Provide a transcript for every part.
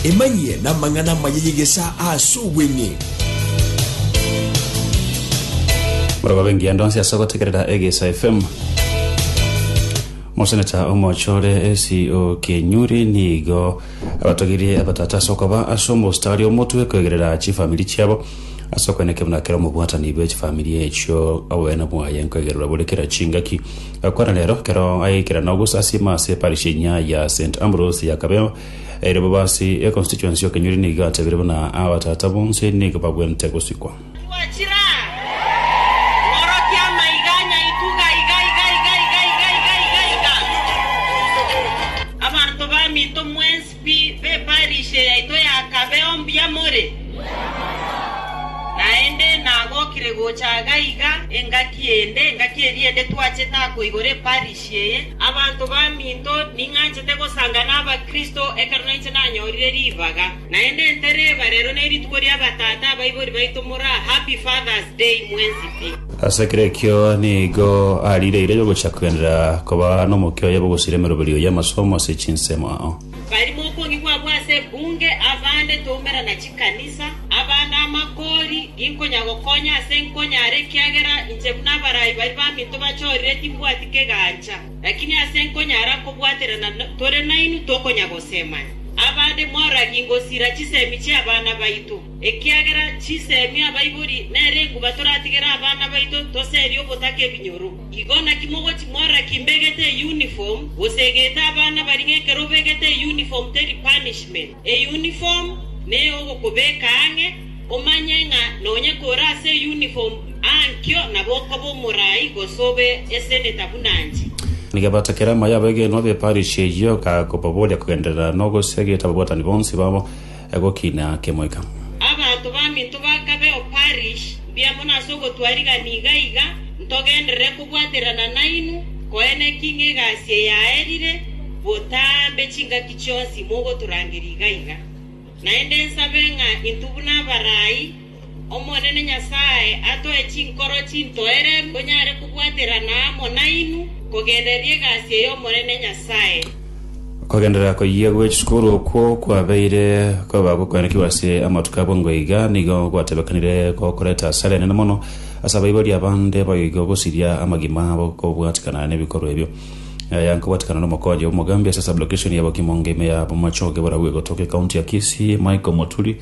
Emanyie namang'ana amaya y'egesaa aase obweng'e. Barabwo bengiya ndonsi ase ogotegerera Egesa FM. Moseneta omochore esi o Kenyuri nigo abatogirie abatata ase okoba ase omosta aria omotwe koegerera chifamiri chiabo ase okwenekera buna kera omobwatani bwe chifamiri echio oboyena bwaye nkoegererwa bore kera chingaki Korende rero, kero agaikera nogosasiima ase parish enyia ya St. Ambrose ya Kabeo, erio bobe ase econstituency y'okenyori nigo gatebirie buna abatata bonsi nigo bagwente gosikwa. Pi, b'eparishe yaito yakabeo mbuya more? Naende nagokire gocha iga iga engaki ende, engaki eria ende twache takoigora eparishe eye. Abanto baminto, ning'anchete gosanga n'Abakristo ekero nainche nanyorire ribaga. Naende ntereba, rero nerituko ri'abatata abaibori baito moraa, Happy Father's Day mwensi pi. Ase kera ekio nigo ariireire gocha kogenderera koba nomokia oye bw'ogosira emeroberi oye amasomo ase chinsemo ao. Barimo okonge kwabo ase ebunge, abande toumera na chikanisa, abande amakori, ginkonya gokonya ase nkonyare ekiagera inche buna abarai baria baminto bachorire timbwati kegancha. Lakini ase nkonyare akobwaterana tore nainwe tokonya gosemania. Abande mwaragi ngosira chisemi chi'abana baito. Ekiagera chinsemi abaibori nere enguba toratigere abana baito toseri ogotaka ebinyoro. Igo naki mogochi mora ki mbegete euniform, gose egete abana bari ng'ekero obegete euniform teri punishment. Euniform neyogokobeka ang'e, omanye ng'a nonya kore ase euniform aa nkio nabo okoba omorai gose obe eseneta buna inche. Ngebaata kera amo y'abegenwa b'eparish eyio, kakobaboria kogenderera nogosegeta ababwatani bonsi babo. egokina kemoika. Abanto baminto bakabeo parish mbia mono ase ogotwarigana iga iga, ntogenderere kobwaterana nainwe, koene ki ng'egasie yaerire botambe chingaki chionsi mogotorangeria iga iga. Naende nsabe ng'a intwe buna abarai, Omonene Nyasae atoe chinkoro chintoereru tonyare kobwaterana amo nainwe, kogenderera egasi ey'Omonene Nyasae. Kogenderera koyia gwe chisukuru okwo kwabeire koba gokwenekigwa ase amatuko abwo ngwo iga nigo gwatebekanire gokoreta asara enene mono ase abaibori abande boigo gosiria amagima abo kobwatikana nebikorwa ebio. Aya nkobwatikana nomokonyi omogambi ase sublocation ya Bokimo ngeime ya Bomachoge borabu egotoka ecounty ya Kisii Michael Moturi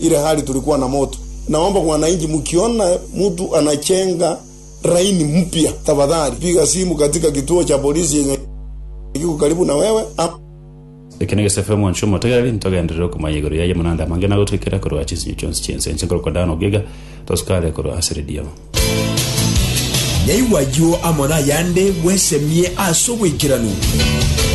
Ile hali tulikuwa na moto, naomba wananchi mkiona mtu anachenga laini mpya, tafadhali piga simu katika kituo cha polisi yenye kiko karibu na wewe ama Eke negesaku kiaye omwancho omotegereri, ntogenderere okomanya igoro yaye amang'ana ande amange na agotwekera korwa chinsinyo chionsi chi'ense. Inche nkorokwa Dani Ogiega, tosukare korwa ase Redio. Naigwa ayio amo nayande bwesemie ase oboikeranu.